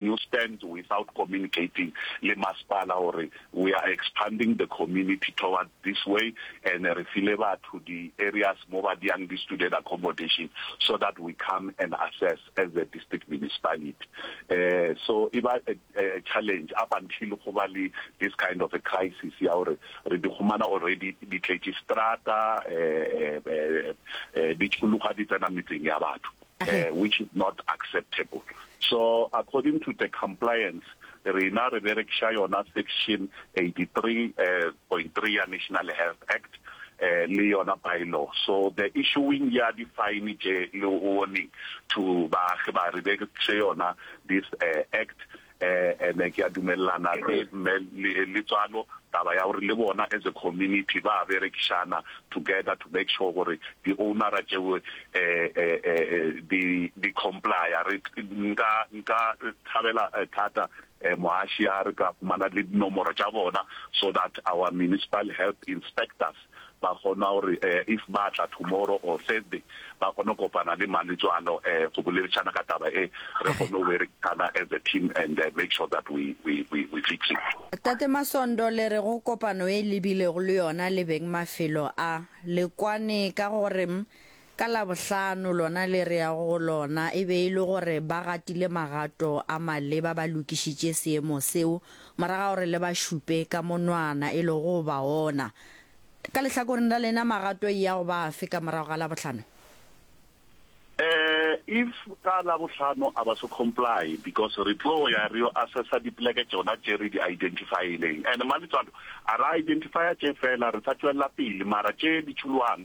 You stand without communicating le masepala gore we are expanding the community towards this way and re file batho di areas mo ba dyang di student accommodation so that we come and assess as the district municipality. Um so e ba a a challenge up until go ba le this kind of a crisis ya gore re di humana already di tletše seterata um di tšhologa di tsena metseng ya batho. which is not acceptable so according to the compliance rena re berekiša yona section 83.3 ya National Health Act le yona bylaw so the issuing ya di fine tše le warning to baagi ba re berekiše yona this act eh, and ke a dumelelana le mme le tswalo taba ya gore le bona as a community ba berekišana together to make sure gore di ownera tšeo eh, eh, eh, di di complya re nka nka thabela thata eh, moaši a re ka fumana le dinomoro tša bona so that our municipal health inspectors ba kgona gore if ba tla tomorrow or Thursday ba kgone go kopana le Maletswalo go boledišana ka taba e, re kgone go berekisana as a team and make sure that we we we we fix it. Tate Masondo, le re go kopano e lebilego le yona le beng mafelo a, le kwane ka gore Ka Labohlano lona le re yago go lona e be e le gore ba gatile magato a maleba ba lokišitše seemo seo morago ga gore le ba šupe ka monwana e lego go ba ona. Ka lehlakoreng la lena magato e ya go ba afe ka morago ga Labohlano? Eh, if ka Labohlano a ba se comply because re tlo ya re yo assessa dipoleke tšona tše re di identify-ileng and Maletswalo a ra identify-a tše fela re sa tšwelela pele mara tše di tšholwang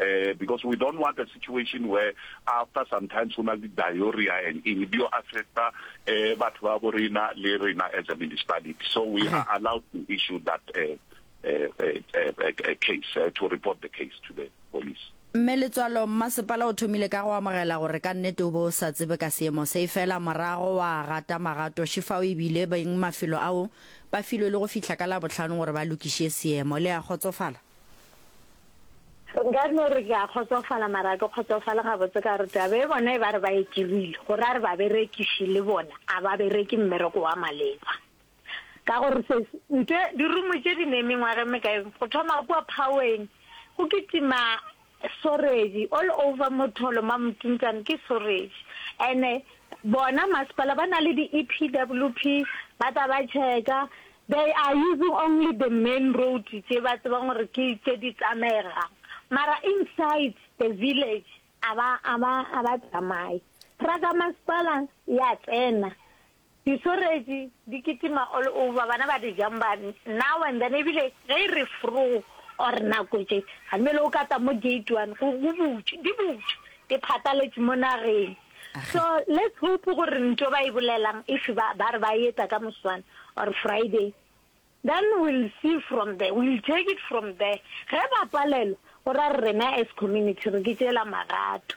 um because we don't want a situation where after sometimes go na le diarrhea and eng di affecta um batho ba bo rena le rena as a municipality so we are allowed to issue that um a case uh, to report the case to the police mme letswalo mmasepala o thomile ka go amogela gore ka nnete o bo o sa tsebe ka seemo se e fela morago wa gata magato shifao ebile beng mafelo ao ba filwe le go fitlha ka labotlhano gore ba lokiše seemo le ya kgotsofala Nka no re ke a kgotsofala mara ke kgotsofale gabotse ka gore taba e bona e ba re ba e dirile go ra re baberekiši le bona a ba bereke mmereko wa maleba ka gore se nte dirumo tše di ne mengwageng mekae go thoma kua phaweng go kitima Sworedi all over motholo ma mtuntsane ke sworedi ene bona masepala ba na le di EPWP ba tla ba checka they are using only the main road tše ba tsebang gore ke tše di tsamaegang mara inside the village a ba a ba a ba tsamaye truck ya masepala ya tsena Disoretši di kitima all over, bana ba di jumper now and then, ebile ge e re froo or nako tše, ga mmele o ka tla mo gate one go butše, di butše, di phataletše mo nageng. So let's hope gore ntho ba e bolelang if ba ba re ba e etsa ka moswane or Friday, then we'll see from there, we'll take it from there. Ge ba palelwa, go ra rena as community re ke tšeela magato.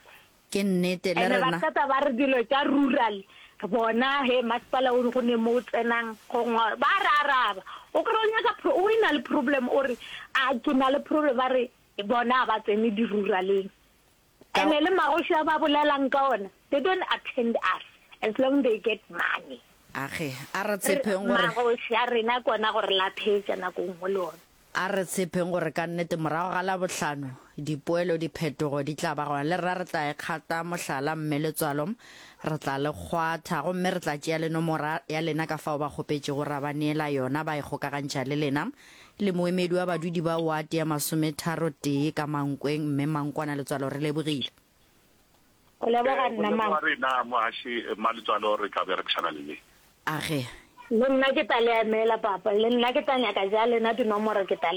Ke nnete le And ba rena. qeta ba re dilo tša rural bona he masepala o go ne mo o tsenang go ngwa ba re araba o kry o nyaka pro- o e na le problem o re a ke na le problem ba re bona ga ba tsene di-ruraleng Ka- and le magoši a ba bolelang ka ona they don't attend us as long they get money Age, a re tshepeng gore magoši a rena kona gore laphetša nako nngwe le ona A re tshepeng gore ka nnete morago ga Labohlano, dipoelo, diphetogo di tla ba gona. Le rena re tla e kgata mohlala, mme le tswalo, re tla le kgwatha. Gomme re tla tšea le nomora ya lena ka fao ba kgopetšego ra ba neela yona, ba e kgokagantšha le lena, le moemedi wa badudi ba wate ya masometharo-tee ka Mankweng. Mme Mankwana le tswalo re lebogile. Go leboga eh, nna mama. Re na mohashi eh, maletswalo re tla berekisana le le. A ge. Le nna ke tla le emela papa. Le nna ke tla nyaka ja lena dinomoro ke tla le